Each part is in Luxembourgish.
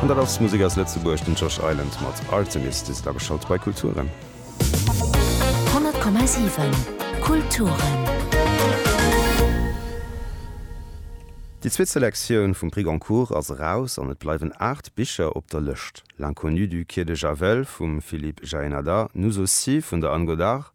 An dat ass Musek aus Lëtzebuerg, den Josh Island mat Artemis. Dir sidd ageschalt bei Kulturen. 100,7 Kulturen. Déi zweet Selektioun vum Prix Goncourt ass eraus an et bleiwen aacht Bicher op der Lëscht, L'inconnu du quai de Javel vum Philippe Jaenada, Nous aussi vun der Anne Godart,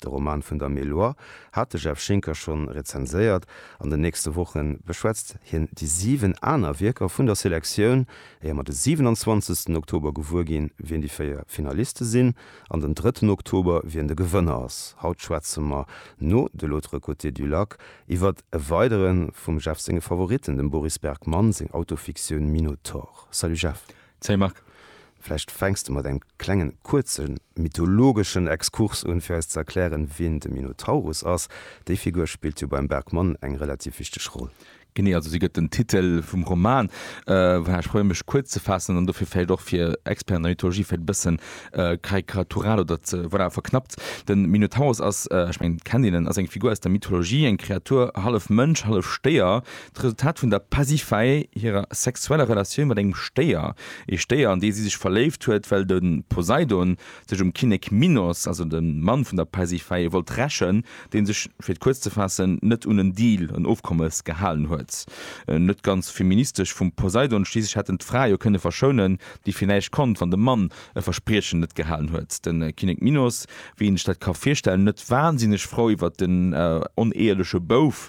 De Roman vun der Meloire hat de Jeff Schinker schonn rezenséiert. An den nächste Woche beschwätzt hien déi 7 aner Wierker vun der Selektioun, éier mer de 27 Oktober gewuer ginn, wien déi 4 Finaliste sinn, an den 3 Oktober, wien de Gewënner ass. Haut schwätze mer no De l'autre côté du lac iwwer e weidere vum Jeff senge Favoritten, dem Boris Bergmann seng Autofiktioun Minotaur. Salut Jeff. Salut Marc. Vläicht fänks de mat engem klengen, kuerze mythologeschen Exkurs un, fir eis ze erklären, wien de Minotaurus ass. Déi Figur spillt jo beim Bergmon eng relativ wichteg Roll. Genee, also si gëtt den Titel vum Roman. Voilà, ech probéieren, mech kuerz ze faassen an dofir vläicht och fir Experten an der Mythologie vläicht e bëssen karikatural oder ze, voilà, verknappt. De Minotaurus ass, ech mengen, et kennt een en, ass eng Figur aus der Mythologie, eng Kreatur, hallef Mënsch, hallef Stéier, D'Resultat vun der Pasiphaë hirer sexueller Relatioun mat engem Stéier, ee Stéier an dee si sech verléift huet, well de Poseidon sech um Kinnek Minos, also dem Mann vun der Pasiphaë, wollt rächen, dee sech, fir et kuerz ze faassen, net un en Deal, en Ofkommes, gehalen huet. Net ganz feministesch vum Poseidon, schliisslech hätt en d'Fra jo kënne verschounen, déi fir näischt konnt, wann de Mann e Verspriechen net gehalen huet. De Kinnek Minos, wéi een sech dat ka virstellen, net wansinneg frou iwwer den oneeheliche Bouf,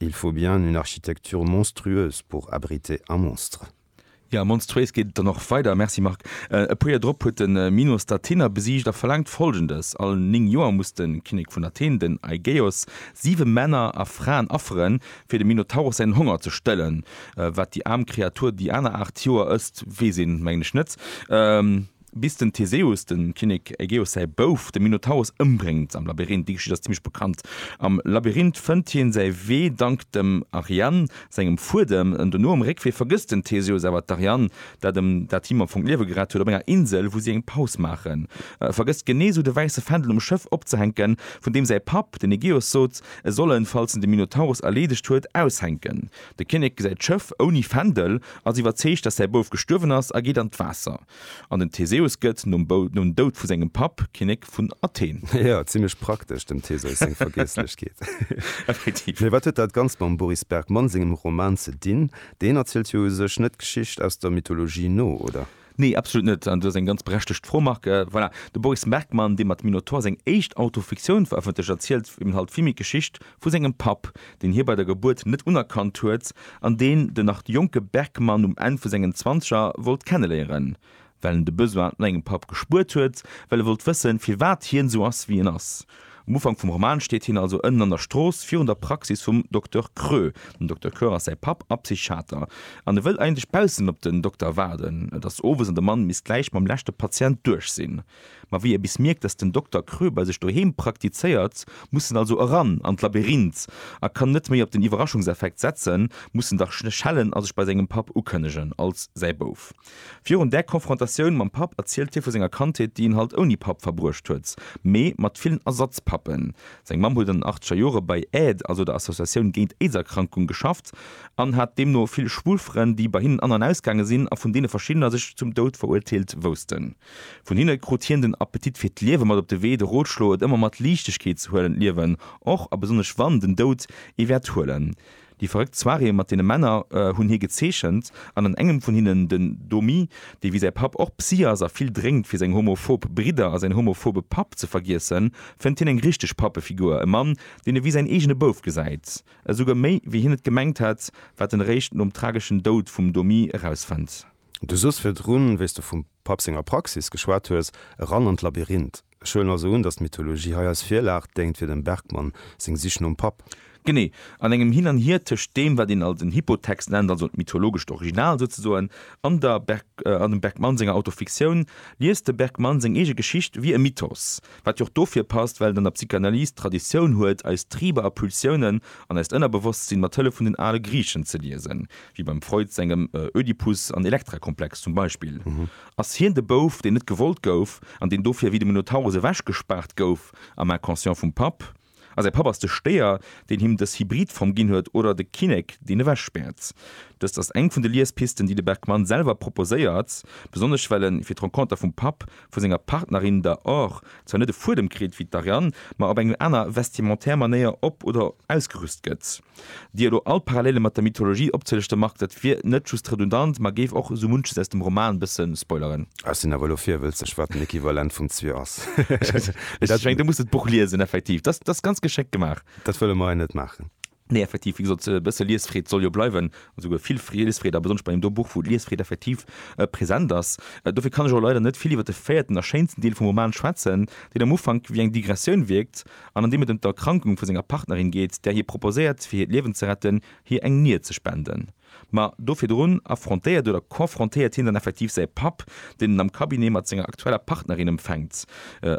Il faut bien une architecture monstrueuse pour abriter un monstre. Jo, monstruéis geet et dann och weider, merci Marc. E puer Joer drop huet de Minos d'Athener besiegt a verlaangt Folgendes, All 9 Joer muss de Kinnek vun Athen, den Aigeos, 7 Männer a Fraen afferen, fir dem Minotauros säin Honger ze stëllen. Wat déi aarm Kreatur déi aner 8 Joer ësst, weess een, mengen ech, net. Bis den Theseus, dem Kinnek Ägeus säi Bouf, de Minotaurus ëmbréngt am Labyrinth. Déi Geschicht ass zimmlech bekannt. Am Labyrinth fënnt hien säi Wee dank dem Ariane sengem Fuedem. Dono um Réckwee vergësst den Theseus awer d'Ariane, dat em dat him am Fong d'Liewe gerett huet, op enger Insel wou si eng Paus maachen. E vergësst genee esou de wäisse Fändel um Schëff opzehänken, vun deem säi Papp, den Ägeus, sot e soll en, falls en de Minotaurus erleedegt huet, aushänken. De Kinnek gesäit d'Schëff ouni Fändel, ass iwwerzeegt, datt säi Bouf gestuerwen ass a geet an d'Waasser. An den Theseus gëtt, nom Doud vu sengem Papp, Kinnek vun Athen. Jo, zimlech praktesch, dem Theseus seng Vergiesslechkeet. Effektiv. Mee wat huet dat Ganzt mam Boris Bergmann sengem Roman ze dinn? Deen erzielt jo u sech net d'Geschicht aus der Mythologie no, oder? Nee, absolut net. An do ass eng ganz berechtegt Fro, Marc. Voilà, de Boris Bergmann, dee mat Minotaur seng éischt Autofiktioun verëffentlecht, erzielt eben halt vill méi d'Geschicht vu sengem Papp, deen hie bei der Gebuert net unerkannt huet an deen den nach jonke Bergman um Enn vu sengen Zwanzeger wollt kenneléieren, well en de Besoin no engem Papp gespuert huet, well e wollt wëssen, firwat hien esou ass, wéi en ass. Um Ufank vum Roman steet hien also ënnen an der Strooss, virun der Praxis vum Dokter Krö. Den Dokter Krö ass säi Papp a Psychiater an e wëll eigentlech baussen op den Dokter waarden. Et ass owes an de Mann misst gläich mam leschte Patient duerch sinn. Ma wéi e bis mierkt, dass den Dokter Krö bei sech doheem praktizéiert, muss en also eran an d'Labyrinth a kann net méi op den Iwwerraschungseffekt setzen, muss en dach schellen a sech bei sengem Papp ukënnegen als säi Bouf. Virun där Konfrontatioun mam Papp erzielt hie vu senger Kandheet, déi en halt ouni Papp verbruecht huet, mee mat villen Ersatzpappen. Seng Mamm huet an den achteger Jore bei AID, also der Associatioun géint Aidserkrankung, geschafft an hat deemno vill schwul Frënn, déi bei hinnen an an ausgaange sinn a vun deene verschiddener sech zum Doud verurteelt woussten. Vun hinne krut hien den Appetit fir d'Liewe mat op de Wee, de Rotschlo, et ëmmer mat Liichtegkeet ze huelen, d'Liewen, och a besonnesch wann den Doud ee wäert huelen. Déi verréckt Soiréeë mat deene Männer hunn hie gezeechent, an an engem vun hinnen, den Domi, dee wéi säi Papp och Psy ass a vill drénkt fir seng homophob Bridder a säin homophobe Papp ze vergiessen, fënnt hien eng richteg Pappefigur, e Mann, deen e wéi säin eegene Bouf gesäit. Esouguer méi, wéi hien et gemengt hätt, wat en eréischt nom trageschen Doud vum Domi erausfënnt. Du sos virdrun, wéi s de vum Papp senger Praxis geschwat hues, eran an d'Labyrinth. Ech huelen also un, datt d'Mythologie hei als Virlag déngt fir dem Bergmann seng Sich nom Papp. Genee. An engem Hin an Hier tëscht deem, wat een als en Hypotext nennt, also en mythologescht Original souzesoen, an der an dem Bergmann senger Autofiktioun, liest de Bergmann seng eege Geschicht wéi e Mythos. Wat jo och dofir passt, well et an der Psychanalyse d'Traditioun huet, eis Triber a Pulsiounen an eist Ënnerbewosstsinn mat Hëllef vun den ale Griichen ze liesen. wéi beim Freud sengem Ödipus an Elektra-Komplex zum Beispill, ass hien de Bouf, deen net gewollt gouf an deen dofir wéi de Minotaurus ewechgespaart gouf am Inconscient vum Papp, a säi Papp ass de Stéier, deen him dës Hybrid-Form ginn huet, oder de Kinnek, deen ewechspäert. Dëst ass eng vun de Liespisten, déi de Bergmans selwer proposéiert, besonnesch well en, fir d'Renconter vum Papp, vu senger Partnerin, der Or, zwar net e Fuedem kritt, wéi d'Ariane, ma op eng aner vestimentaire Manéier op oder ausgerüst gëtt. Déi elo all Parallele mat der Mythologie opzeléchte Marc, dat wier net just redundant, ma géif och esou munches aus dem Roman bësse spoileren. Ech sinn awer elo virwëlzeg, wat den Equivalent vum Zwier ass. Ech mengen, du muss dat Buch liesen, effektiv. Dat ass ganz geschéckt gemaach. Dat wëlle mer hei net maachen. Nee, effektiv, wéi gesot, e bësse Liesfreed soll jo bleiwen, esouguer vill Liesfreed, a besonnesch bei deem do Buch, wou d'Liesfreed effektiv present ass. Dofir kann ech och leider net vill iwwer de véierten a schéinsten Deel vum Roman schwätzen, deen am Ufank wéi eng Digressioun wierkt, an an deem et ëm d'Erkrankung vu senger Partnerin geet, där hie proposéiert, fir hiert Liewen ze retten, hir eng Nier ze spenden. Ma do virdrun affrontéiert oder confrontéiert hien dann effektiv säi Papp, deen en am Cabinet mat senger aktueller Partnerin empfänkt,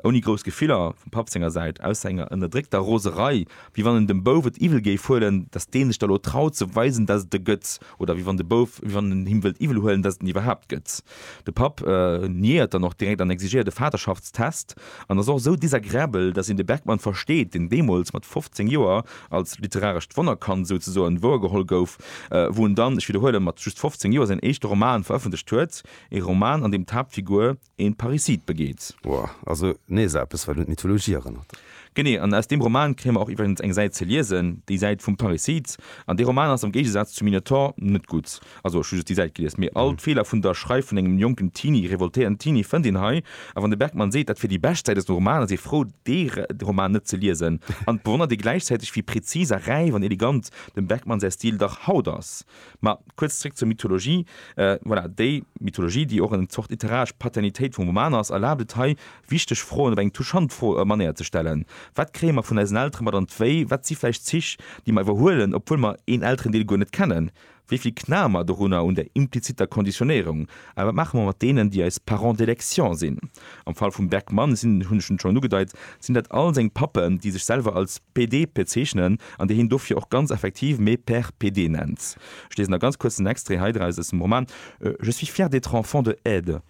ouni grouss Gefiller vum Papp senger Säit, ausser enger ënnerdréckter Roserei, wéi wann en dem Bouf et iwwel géif huelen, datt dee sech da lo traut ze weisen, datt et e gëtt, oder wéi wann de Bouf, wéi wann en him wëllt iwwel huelen, datt et en iwwerhaapt gëtt. De Papp niéiert dann och direkt an exigéiert e Vaterschaftstest an ass och esou désagréabel, dass een de Bergmann versteet, deen deemools mat 15 Joer als literarescht Wonnerkand souzesoen wouergeholl gouf, wou en dann, ech widderhuelen, mat just 15 Joer säin éischte Roman verëffentlecht huet, ee Roman, an deem d'Haaptfigur een Parricide begeet. Woah, also nees eppes, wat un d'Mythologie erënnert. Genee, an aus deem Roman kréie mer och iwwregens eng Säit ze liesen, déi Säit vum Parricide. An dee Roman ass am Géigesaz zum Minotaur net gutt. Also ech hu just déi Säit gelies, mee all d'Feeler vun der Schreif vun engem jonken Teenie, revoltéierten Teenie, fënnt een hei. A wann de Bergmann seet, dat wier déi bescht Säit aus dem Roman, ass ee frou, dee Roman net ze liesen. An et bewonnert ee gläichzäiteg, wéi prezis a räif an elegant dem Bergmann säi Stil dach haut ass. Ma kuerz zréck zur Mythologie. Voilà, déi Mythologie, déi och en Zort literaresch Paternitéit vum Roman ass, erlaabt et hei Wichteg Froen op eng touchant Fro Manéier ze stellen, Wat kréie mer vun eisen Eltere mat an d'Wéi? Wat si vläicht Zich, déi mer iwwerhuelen, obwuel mer een Elterendeel guer net kennen? Wéi vill knae mer dorunner, un der implizitter Konditionéierung? A wat maache mer mat deenen, déi eis Parents d'élection sinn? Am Fall vum Bergmann sinn, hunn ech en schonn ugedeit, sinn dat all seng Pappen, déi sech selwer als PD bezeechnen an déi hien dofir och ganz effektiv me père PD nennt. Ech liesen da ganz kuerz den Extrait hei draus aus dem Roman, Je suis fière d'être enfant de Ed.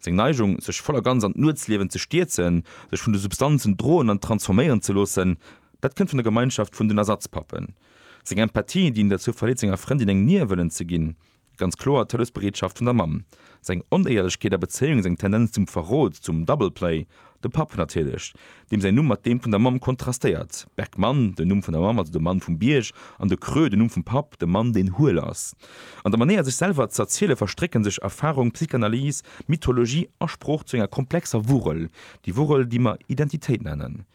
Seng Neigung, sech voll a ganz an d'Nuetsliewen ze stierzen, sech vun de Substanzen droen an transforméieren ze loossen, dat kënnt vun der Gemeinschaft vun den Ersatzpappen. Seng Empathie, déi en derzou verleet senger Frëndin eng Nier wëllen ze ginn, ganz kloer d'Hëllefsbereetschaft vun der Mamm. Seng Onéierlechkeet a Bezéiung, seng Tendenz zum Verrot, zum Double-play, De Papp natierlech, deem säin Numm mat deem vun der Mamm kontrastéiert, Bergmann, den Numm vun der Mamm, also de Mann vum Bierg, an de Creux, den Numm vum Papp, de Mann, deen huel ass. An der Manéier sech selwer z'erziele verstrécke sech Erfarung, Psychanalyse, Mythologie a Sprooch zu enger komplexer Wurrel, déi Wurrel, déi mer Identitéit nennen.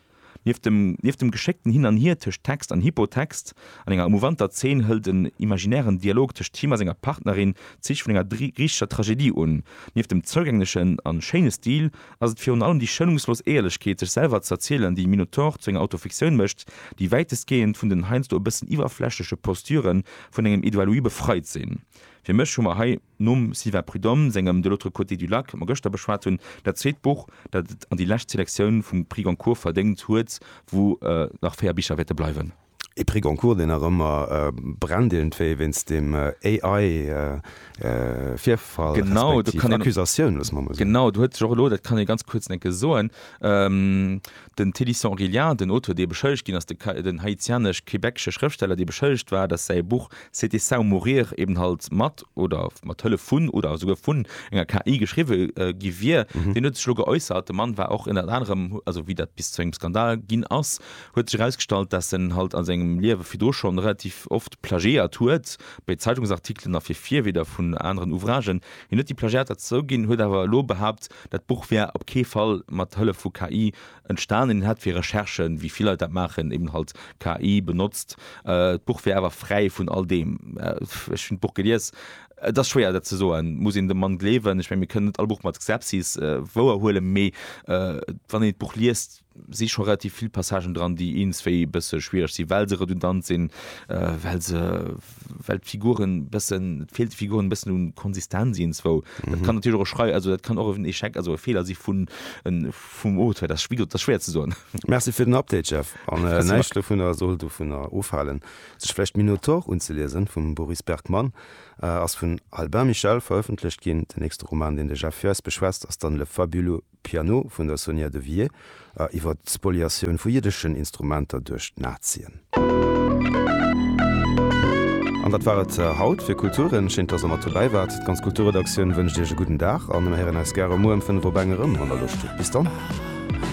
Nieft dem nieft dem geschéckten Hin an Hier tëscht Text an Hypotext an enger emouvanter Zeen hëlt en imaginären Dialog tëscht him a senger Partnerin d'Zich vun enger griichescher Tragedie un. Nieft dem zougänglechen an schéine Stil ass et virun allem déi schonungslos Éierlechkeet, sech selwer z'erzielen, déi Minotaur zu enger Autofiktioun mécht, déi wäitestgehend vun den heiansdo e bëssen iwwerflächleche Posturë vun engem Edouard Louis befreit sinn. Fir mech hu mer hei. Nom Sylvain Prud'homme sengem De l'autre côté du lac, dat mer gëschter beschwat hunn, dat zweet Buch, dat et an déi lescht Selektioun vum Prix Goncourt verdéngt huet, wou nach véier Bicher wäerte bleiwen. E Prix Goncourt, deen nach ëmmer brennt, iergendwéi wéinst deem AI-Virfall respektiv Accusatioun, loosse mer emol soen. Genau, do huet sech och elo, dat kann ee ganz kuerz, enke soen, Den Teddy St-Aurélien, den Auteur, dee beschëllegt ginn ass, den haitianesch-quebecesche Schrëftsteller, dee beschëllegt war, datt säi Buch C'était ça ou mourir eben halt mat oder mat Hëllef vun oder esouguer vun enger KI geschriwwe gi wier, deen huet sech elo geäussert. De Mann war och ënnert anerem, also wéi dat bis zu engem Skandal ginn ass, huet sech erausgestallt, datt en halt a sengem Liewe virdru schonn relativ oft plagiéiert huet, bei Zeitungsartikelen a fir Virwierder vun aneren Ouvragen. Hien huet déi Plagiater zouginn, huet awer elo behaapt, dat Buch wär op kee Fall mat Hëllef vu KI entstanen. Hien hätt fir Recherchen, wéi vill Leit dat maachen, eben halt KI benotzt. D'Buch wär awer fräi vun all deem. Ech hunn d'Buch gelies. Et ass schwéier dat ze soen. Muss een dem Mann gleewen? Ech mengen, mir kënnen net all Buch mat Skepsis wouerhuelen, mee wann een d'Buch liest, si scho relativ vill Passagen dran, déi eens wéi e bësse schwiereg sinn, well se redundant sinn, well se, well d'Figuren bëssen, et feelt de Figuren e bëssen u Konsistenz ienswou. Dat kann natierlech och e Schrei, also dat kann och en Echec, also e Feeler si vun, vum Auteur. Dat ass, wéi gesot, dat ass schwéier ze soen. Merci fir den Update, Jeff. An näischt dovunner soll dovunner ofhalen, sech vläicht Minotaur unzeliesen vum Boris Bergmann. Ass vun Albin Michel verëffentlecht ginn. Den nächste Roman, deen de Jeff fir eis beschwätzt, ass dann Le fabuleux Piano vun der Sonia de Wier a iwwer d'Spoliatioun vu jiddeschen Instrumenter duerch d'Nazien. An dat war et haut fir Kulturen. Schéin, dass der mat dobäi waart. D'ganz Kulturredaktioun wënscht Iech e gudden Dag an mir héieren eis gäre muer ëm 5 op eng erëm an der Loscht. Bis dann.